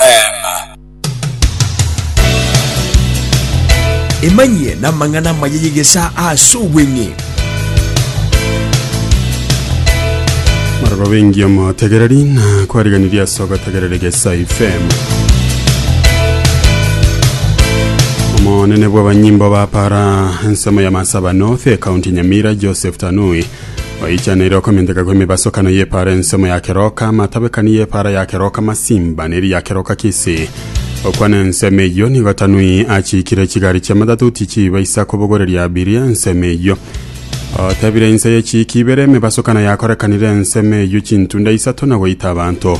Amen. Emanyie namang'ana amaya y'egesaa ase obweng'e. Maraba bengi omotegereri na kwariganirie ase ogotegerera egesa FM. Omonene bw'abanyimbo ba para ensemo ya Masaba North, ekaunti Nyamira, Joseph Tanui Oichaneire okomenteka kw'emebasokano y'epaara ensemo ya keroka, amatabekani y'epaara ya keroka masimba, ne eria keroka kise. Okwana ensemo eyio nigo Tanui achiikire chigari chi'amatatuti chiiba isa kobogoreria Abiri ensemo eyio. Otebire inse ye chiiki ibere emebasokano yakorekanire ensemo eyio chintunda isato na goita abanto.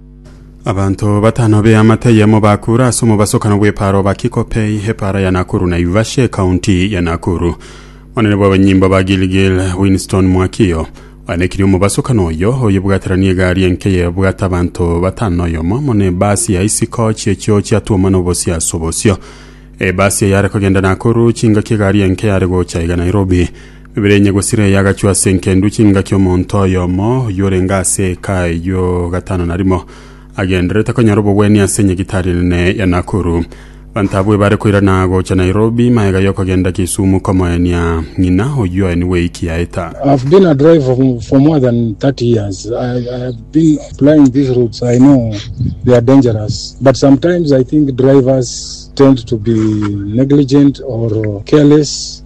Abanto batano b'eamate eyemo bakura ase omobasokano bw'epaara o Bakikopei, epaara ya Nakuru Naivasha, ekaunti ya Nakuru. Monene bw'abanyimbo ba Gilgil, Winston Mwakio, oenekirie omobasokano oyo, oyebwaterania egari enke yebwate abanto batano na oyomo, muna ebasi ya isiko chi'echio chiatwomwa nobosie ase obosio. Ebasi eye yare kogenda Nakuru, chingaki egari enke yare gocha iga Nairobi. Bibere enye gosira eye agachwa ase enkendu chingaki omonto oyomo oyio orenge ase eka eyio gatano na rimo agendererete konyora obogwenia ase nyagitari enene ya Nakuru. Banto abwo ebare koirana gocha Nairobi magega yokogenda Kisumu komoenia ng'ina oyio aye nigo eiki yaeta. I've been a driver for more than 30 years. I, I have been plying these routes. I know they are dangerous. But sometimes I think drivers tend to be negligent or careless.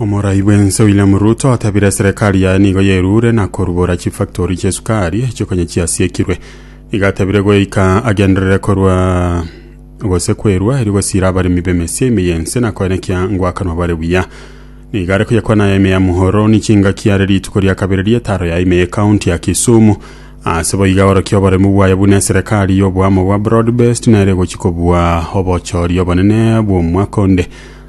Omorai bwense William Ruto atabire serikali yaye nigo yerure na korugora chifactori chiesukari echio konya chiasiekirwe. Iga atabire goika agenderere korwa gose kwerua eri gosira abaremi b'emesia ime yense na koenekia ngwakanwa bare buya. Nigo are koyekwana aya ime ya Muhoroni chingaki are rituko ria kabere ri'etaro ya ime y'ekaunti ya Kisumu. Ase boiga orokia oboremu bwaye buna eserikali y'oboamo bwa broad based nere egochi kobua obochoria obonene bw'omwaka onde.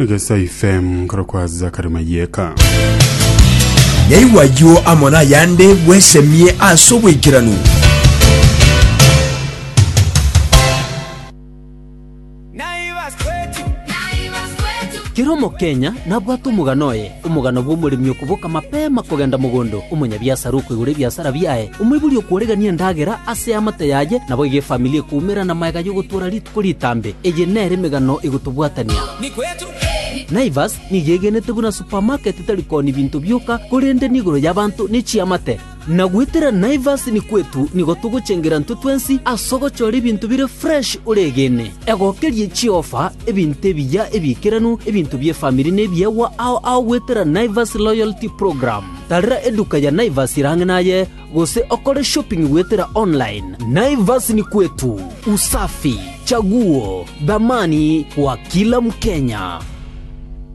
Egesa FM nkorokwa Zakari Mayeka. Yaigwa ayio amo nayande, bwesemie ase obwaikeranu. Kera Omokenya nabwate omogano oye. Omogano bw'omoremi okoboka mapema kogenda mogondo, omonyabiasara okoigora ebiasara biaye, omoibori okworegania endagera ase eamate yaye, naboigo efamili ekoumera namaega y'ogotoora rituko ritambe. Eye nere emegano igotobwatania. Naivas nigo egenete buna supamaketi tari kooni binto bioka, korende nigoro y'abanto ne chiamate. Na goetera Naivas ni kwetu nigo togochengera intwe twensi ase ogochora ebinto bire fresh oregene. Egokerie chiofa, ebinto ebiya ebiikeranu, ebinto bi'efamiri nebiegwa ao ao goetera Naivas Loyalty Program. Tarera eduka ya Naivas ere ang'e naye gose okore shopping goetera online. Naivas ni kwetu, usafi, chaguo, dhamani kwa kila mkenya.